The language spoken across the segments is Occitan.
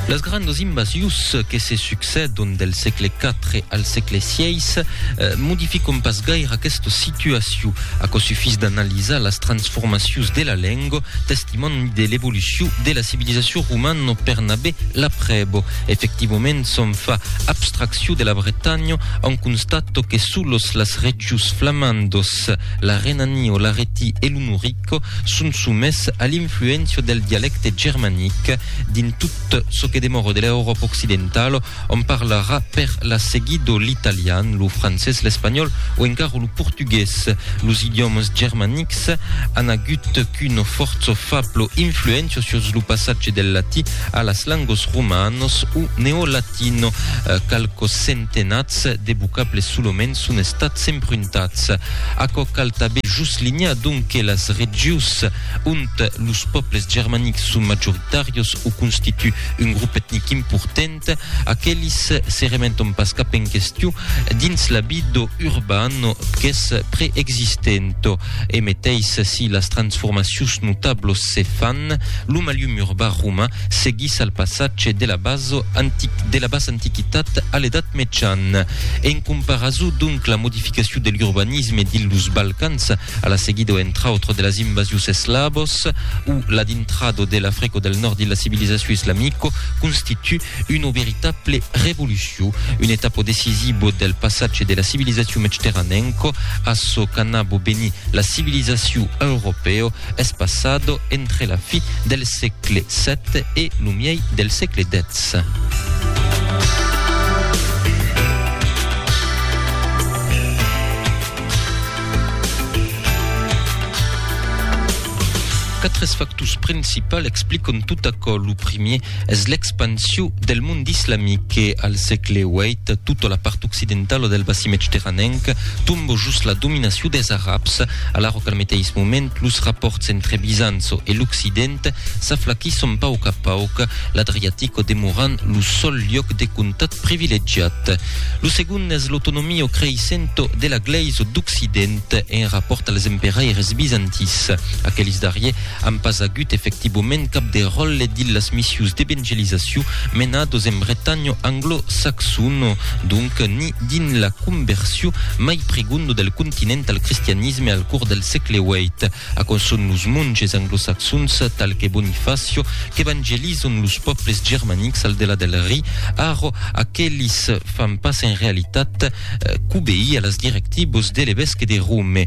Las grandas invasius que se succèdon del sègle IV al sègle VI modificon pas gaire aquesta situacion. Aquò sufís d'analizar las transformacius de la lenga, testimòni de l'evolucion de la civilizacion romana per n'aver la prèva. Efectivament, s'on fa abstraccion de la Bretanha, on constata que solos las regions flamandas, la Renania, l'Aretí e lo Norí, Q son somés a l'influéncia del dialècte germanic dins tot çò que demòra de l'Euròpa occidentala, ont parlarà per la seguida l'italian, lo francés, l'espanhòl o encara lo portugués. Los idiòmas germanics an agut qu'una fòrça fabla influéncia sus lo passatge del latí a las langas romanas o neolatino, qualques centenats de vocables solament son estats empruntats. Aquò cal tanben joslinhar donc que las regius ont los pòbles germanics son majoritàrios o constituen un grop etnic important, aquelis se remeton pas cap en question dins l'habido urban qu'es preexistent. E meteis si las transformacions notablos se fan, lo malhum urban roman seguís al passatge de la bas antiquitat a l'Edat Mejan. En comparason, donc, la modificacion de l'urbanisme dins los Balcans a la seguida, entre autres, de las invasions eslavos o la dintrada de l'Africa del Nòrd dins la civilizacion islamica constitu una veritable revolucion, un etapa decisiva del passatge de la civilizacion mecteranenca a çò qu'anava venir la civilizacion europèa. es passado entre la fi del sègle xvii e lo miei del sègle xix. Quatre factors principals explican tot aquò. Lo primièr, Es l'expansion del mond islamic que, al sègle viii, tota la part occidentala del bassin medterranenc tomba jos la dominacion des Arabs, alara qu'al meteis moment los rapòrts entre Bizanço e l'Occident s'aflaquisson pauc a pauc, l'Adriatico demorant lo sol liòc de contat privilegiat. Lo segond es l'autonomia creissenta de la Glèisa d'Occident en rapòrt als emperaires bizantins. Aqueles darriers An pas agut efectivoment cap de ròlle dins las missius d'evangelizaciu menados en Bretanha anglo-saxona, donc ni dins la conversion mai prigonda del continent al cristianisme al cors del sègle viii. Aquò son los monges anglo-saxons, tal que Bonifacio, qu'evangelizan los pòbles germanics al delà del Ri, arro aquelis fan pas en realitat qu'obeir a las directivas de l'evesque de Rome.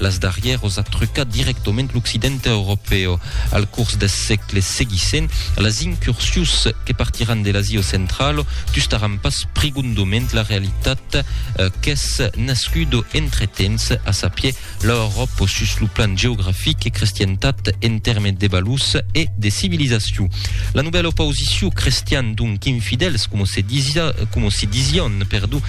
Las darrièros a trucat dirèctament l'Occident europèu. Al curs deth sègle seguissent, las incursions que partiràn de l'Asia centrala tustaràn pas prigondament la realitat qu'es nascuda entretemps, a sapier, l'Euròpa sus lo plan geografic e crestientat en tèrmes de valors e de civilizacion. La novèla oposicion crestian donc infidèls, coma se disián, perdon,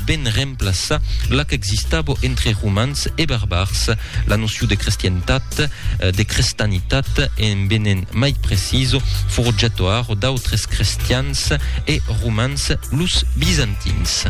ben remplaçar la qu'existava entre romans e barbars, la noció de crestientat, de crestanitat en venent mai preciso forjatoar d'autres crestians e romans, los bizantins.